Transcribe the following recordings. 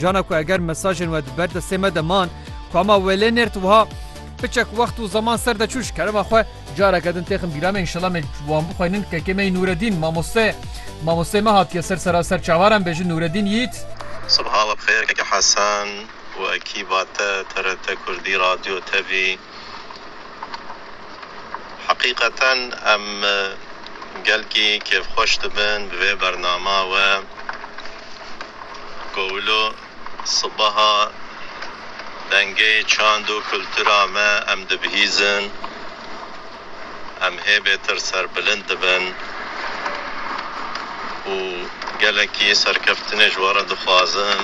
Cana ku eger mesajên we di ber destê me de man, kama wê lê nêrt wiha, Piçek wext û zeman ser de çû ji kerema xwe, careke din têxin bîra me înşela me wan bixwînin, kekê me yî Nûredîn, mamoste, mamosteyê me hatiye ser sera ser çavar em bêjin Nûredîn yît. Sibeha we bi xêr keke Hesen, wekî vate TRT Kurdî, radyo, tevî. Heqîqeten em gelkî kêfxweş dibin bi vê bernama we ku wilo sibeha dengê çand û kultura me em dibihîzin. em hê bêtir serbilind dibin û gelekî serkeftinê ji we re dixwazin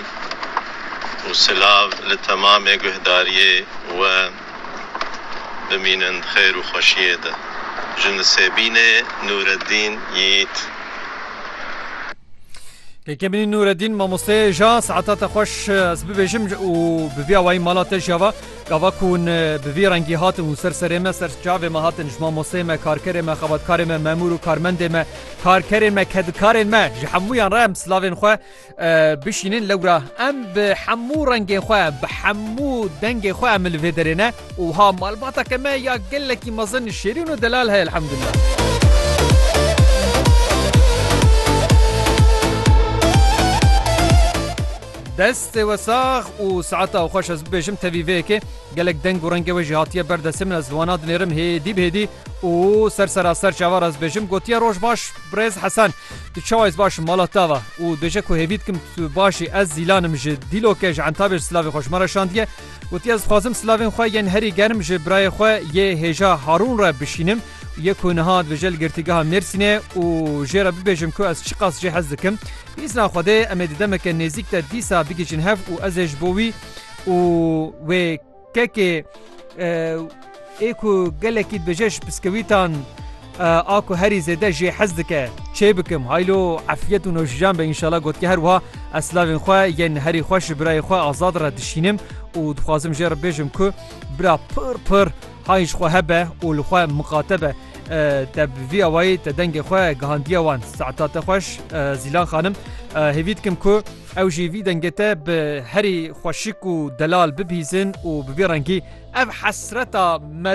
û silav li temamê guhdariyê we bimînin di xêr û xweşiyê de. Ji Nisêbînê Nûredîn Yîît. Kekebînî Nûredîn, Mamosteyê ja, Saetata xweş ez bibêjim û bi vî awayî mala te jî ava. Gava ku hûn bi vî rengî hatin, hûn ser serê me, ser çavê me hatin, ji mamosteyê me, karkerê me, xebatkarê me, memûr û karmendê me, karkerên me, kedikarên me, ji hemûyan re em silavên xwe bişînin. Lewra em bi hemû rengên xwe, bi hemû dengê xwe em li vê derê ne û wiha malbateke me ya gelekî mezin, şêrîn û delal heye elhemdulillah. Destê we sax û saeta xweş ez bibêjim tevî vê yekê gelek deng û rengê we jî hatiye ber destê min ez li wana dinêrim hêdî bi hêdî û ser sera ser çavar ez bêjim gotiye roj baş birêz Hesen tu çawa ez baş mala tava û bêje ku hêvî dikim tu başî ez zîlanim ji dîloke ji entabê ji silavê xwe ji me re şandiye gotiye ez dixwazim silavên xwe yên herî germ ji birayê xwe yê hêja Harûn re bişînim Ye ku niha dibêje li Girtîgeha Mêrsînê û jê re bibêjim ku ez çiqas jê hez dikim. Bi îzna Xwedê em ê di demeke nêzîk de dîsa bigihîjin hev û ez ê ji bo wî û wê kekê ê ku gelekî dibêje ji piskewîtan a ku herî zêde jê hez dike çê bikim. Haylo efyet û nojîjan be înşala gotke her wiha ez silavên xwe yên herî xweş ji birayê xwe Azad re dişînim û dixwazim jê re bibêjim ku bira pir pir Qay ji xwe hebe û li xwe miqate be. Te bi vî awayî te dengê xwe gihandiye wan. Saeta te xweş Zîlan xanim. Hêvî dikim ku ew jî vî dengê te bi herî xweşik û delal bibihîzin û bi vî rengî ev hesreta meriv